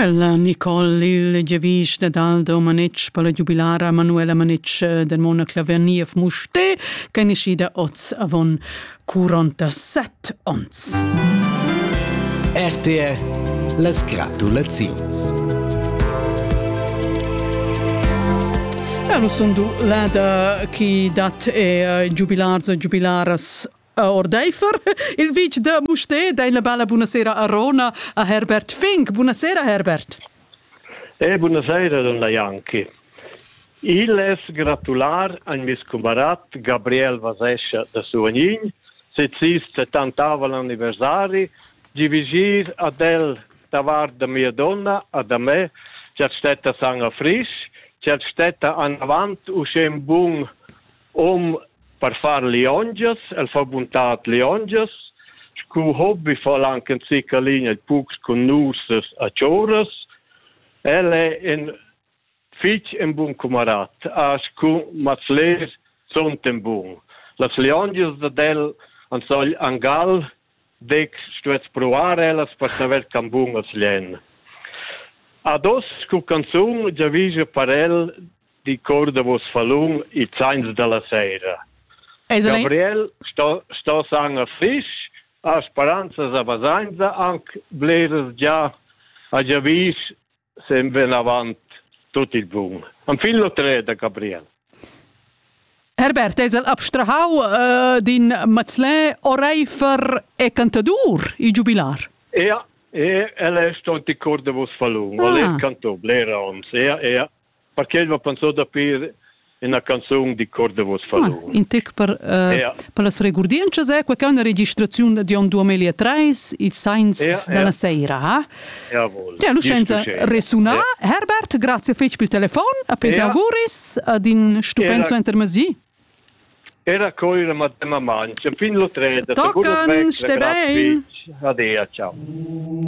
Ella Nicole, il giavisch da Daldo Manetsch per la giubilara Manuela Manetsch del Mona Claverniev Musté, che è nascida oz avon 47 ons. RTR las gratulaziuns. Ja, lu sun du lada chi dat e giubilarz e giubilaras ordeifer il vitg da Mustér dein la bella buonasera a Rona a Herbert Fink. Buonasera Herbert. Eh, buonasera donna Janki. Il es gratular a mes cumarat Gabriel Vasescha da Suvanin, sezista tantava l'anniversari, di vigir ad el davart da mia donna, a da me, chat stetta san a frisch, chat stetta an avant uschè un bun hom per far liongias, el fa buntad liongias, scu hobby fa el anche in zicca ligna pucs cun nursas a choras. El è in fitg in bun camarat, a scu mats les sunt in bun. Las liongias dad el an sogl angal dec stuets provar ellas per saver can bun as lien. Ados cu canzun giavija per el di cor davos fallun e zains dalla seira. Gabriel sto, sto san a frisch, a speranzas a basainza anc bleres già a già vis sem ven avant tut il bun. Am fin l'otre da Gabriel. Herbert es el abstrahau uh, din Mazlin oreifer e cantadur il giubilar. Ja, e el è stont i cor de vos falun, ah. o le canto blera ons, ja, ja. perché el m'ha pensà da pir ina canzun di cor de vos fadun. Ah, in tec per, uh, ja. per las regurdientschas è quella una registraziun di on 2003, il Sains ja, della ja. Seira. Ha? Jawohl. Ja, Lucenza resuna. Ja. Herbert, grazie fetg per il telefon, a pens ja. auguris ad in stupenzo intermesi. Era coira madema mangia, fin lo treda. Tocan, ste bein. Adia, ciao.